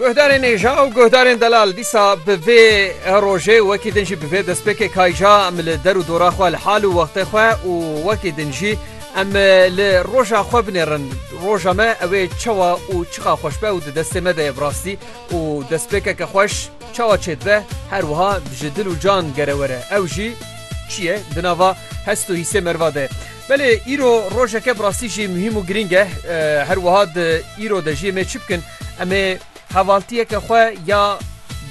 Guhdarên êja û guhdarên delal dîsa bi vê rojê wekî din jî bi vê destpêkê kayja em li der û dora xwe li hal û wextê xwe û wekî din jî em li roja xwe binêrin roja me ew ê çawa û çiqa xweş be û di destê me de ye bi rastî û destpêkeke xweş çawa çêdibe her wiha ji dil û can gere were ew jî çi ye di nava hest û hîsê merva de. Belê îro rojeke bi rastî jî muhîm û girîng e. Her wiha di îro de jî em ê çi bikin? Em ê hevaltiyeke xwe ya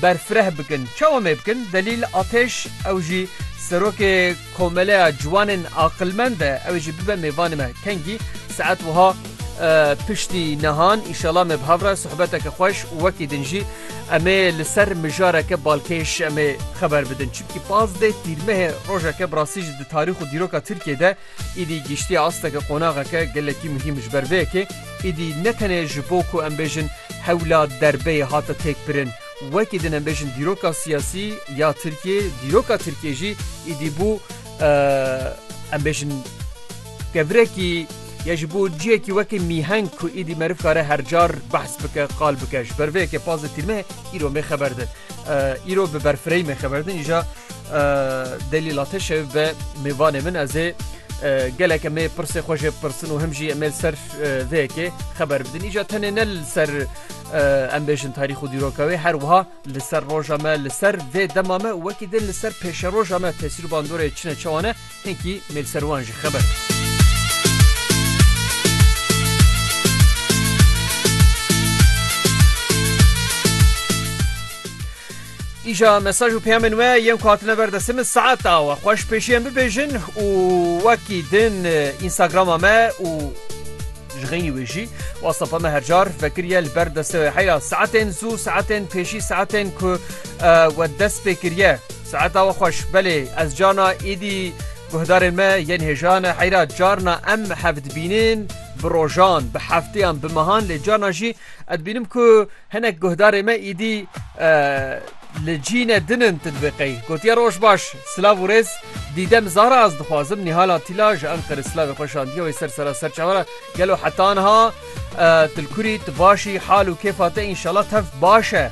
berfireh bikin. Çawa em ê bikin? Delîl Ateş ew jî Serokê Komeleya Ciwanên Aqilmend e. Ew ê jî bibe mêvanê me. Kengî? Saet wiha piştî nihan. Înşela me bi hev re sohbeteke xweş û wekî din jî. Em ê li ser mijareke balkêş em ê xeber bidin. Çimkî pazdeh tîrmehê rojeke bi rastî jî di tarîx û dîroka Tirkiyê de îdî gihîştiye asteke qonaxeke gelekî muhîm. Ji ber vê yekê îdî ne tenê ji bo ku em bêjin hewla derbeyê hate têkbirin. Wekî din em bêjin dîroka siyasî ya Tirkiyê, dîroka Tirkiyê jî îdî bû em bêjin, Kevrekî, ya ji bo ciyekî wekî mîheng ku îdî meriv kare her car behs bike, qal bike. Ji ber vê yekê pas di tîrmeyê îro mê xeber din. Îro bi berfireyî mê xeber din îja delîla te şev be mêvanê min ez ê gelek em ê pirsê xwe jê bipirsin û him jî em ê li ser vê yekê xeber bidin. Îja tenê ne li ser em bêjin tarîx û dîroka wê her wiha li ser roja me, li ser vê dema me û wekî din li ser pêşeroja me tesîr û bandorê çin e çawa ne. Hinkî mêlserwan ji xeber. Îja mesaj û peyamên we yên ku hatine ber destê min saet awe xweş pêşiyan bibêjin û wekî din Instagrama me û ji xeynî wê jî wastapa me hercar vekiriye li ber destê we heyra saetên zû saetên pêşî saetên ku we dest pê kiriye. Saeta we xweş. Belê ez cana êdî guhdarên me yên hêjan e heyra carna em hev dibînin bi rojan, bi hefteyan, bi mehan lê carna jî ez dibînim ku hinek guhdarê me êdî li cî ne din in tu dibê qey. Gotiye roj baş, silav û rêz Dîdem Zara ez dixwazim Nîhala Tîla ji Enqerê silavê xwe şandiye wê ser sera serçavan e gelo heta niha tu li kurî tu baş î hal û kêfa te înşela tev baş e.